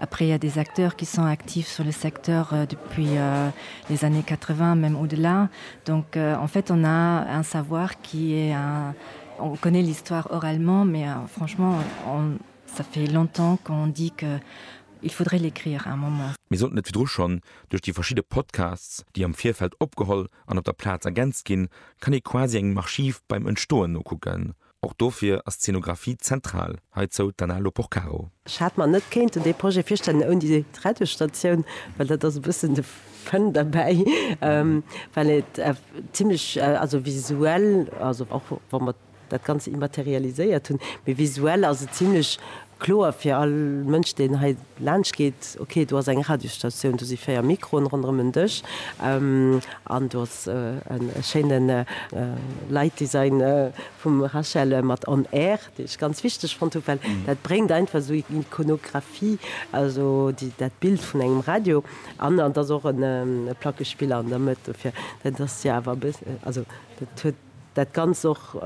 Après, il y a des acteurs qui sont actifs sur le secteur depuis les années 80, même au-delà. Donc, en fait, on a un savoir qui est un, on connaît l'histoire oralement, mais franchement, on, ça fait longtemps qu'on dit que il faudrait l'écrire à un moment. Mir sollten et virdru schonn duerch déi verschidde Podcasts, déi am Virfeld opgeholl an op der Plaz ergänzt ginn, kann ee quasi engem Archiv beim Entstoen nokucken. Och dofir ass d'Szenografie zentral, heizou d'Anna Loporcaro. Ech hat mer net kéinten dee Projet virstellen ouni déi drette Statioun, well dat ass e bëssen de Fun derbäi, well et zimlech, also visuell, also och wa mer dat Ganze immaterialiséiert hunn, mee visuell ass et zimlech kloer fir all Mënsch, deen hei laanscht geet, ok, do ass eng Radiostatioun, do si véier Mikroen ronderëm en Dësch an do ass e schéine Lightdesign vum Rachel mat On Air, dee ech ganz wichteg fonnt hu, well dat bréngt einfach esou Ikonographie, also dat Bild vun engem Radio an. An et ass och e Plackespiller an der Mëtt, dofir dat ass jo awer e bëss, also dat huet dat Ganzt och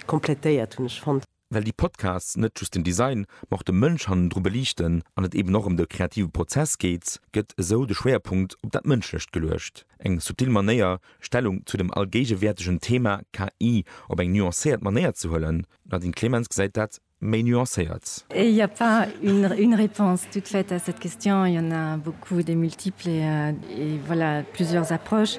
komplettéiert, hunn ech fonnt. Well déi Podcasts net just den Design, ma och de Mënsch hannendru beliichten an et eben och ëm de kreative Prozess geet, gëtt esou de Schwéierpunkt op dat Mënschlecht geluecht. Eng subtil Manéier, Stellung zu dem allgéigewäertegen Thema KI op eng nuancéiert Manéier ze huelen. D'Nadine Clemens gesäit dat méi nuancéiert. Il y a pas une réponse toute faite à cette question, il y en a beaucoup, des multiples et voilà plusieurs approches.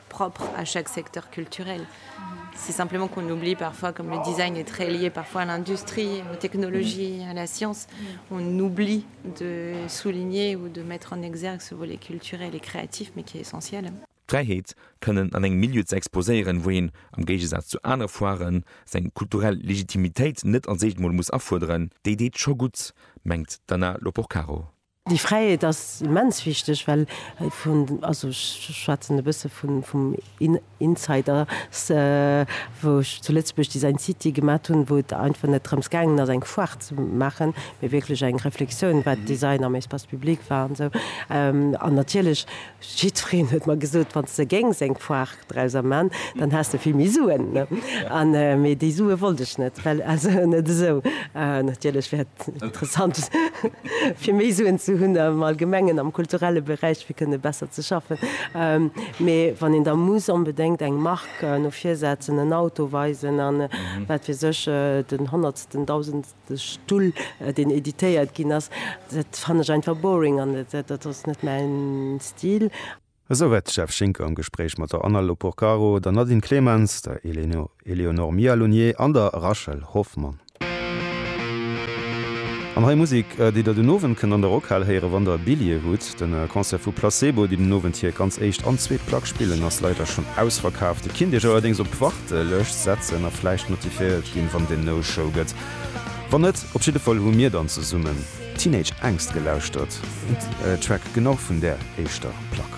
propre à chaque secteur culturel. C'est simplement qu'on oublie parfois, comme le design est très lié parfois à l'industrie, aux technologies, mm-hmm. à la science, mm-hmm. on oublie de souligner ou de mettre en exergue ce volet culturel et créatif, mais qui est essentiel. D'Fräiheet, kënnen an engem Milieu ze exposéieren, wou een, am Géigesaz zu anere Foiren, seng kulturell Legitimitéit net als éischt mol muss afuerderen, déi deet scho gutt, mengt d'Anna Loporcaro. Déi Fräiheet ass immens wichteg, well vun, also ech schwätzen e bësse vum Insider, wou ech zu Lëtzebuerg Design City gemat hunn, wou et einfach net drëms gaangen ass eng Foire ze maachen, mee wierklech eng Reflexioun wat Design am Espace public war an esou. An natierlech Jiddwereen huet mer gesot, wann s de géings eng Foire drauser man, dann häss de vill méi Suen. Mee déi Sue wollt ech net, well also net esou. Natierlech wär et interessant fir méi Suen ze hunn am Allgemengen am kulturelle Beräich fir kënne besser ze schaffen. Mee wann een da muss onbedéngt eng Mark no vir setzen, en Auto weisen a wat weess ech, den honnertsten, dausendsten. De Stull, deen editéiert ginn ass, dat fannen ech einfach boring an dat ass net mäin Stil. Esou war d'Steph Schinker am Gespréich mat der Anna Loporcaro, der Nadine Clemens, der Éléonore Mialonier an der Rachel Hoffmann. An hei Musek, déi der den Owend kënnt an der Rockhal héieren, wann der Billje hutt. De Concert vu Placebo, déi den Owend hir ganz éischt an zweet Plack spillen, ass leider schonn ausverkaaft. Kinnt Iech allerdéngs op d'Wach. Lëscht setzen a vläicht notifiéiert ginn, wann den No Show gëtt. Wann net, op jidde Fall hu mir dann zesummen Teenage Angst gelauschtert, en Track genau vun där éischter Plack.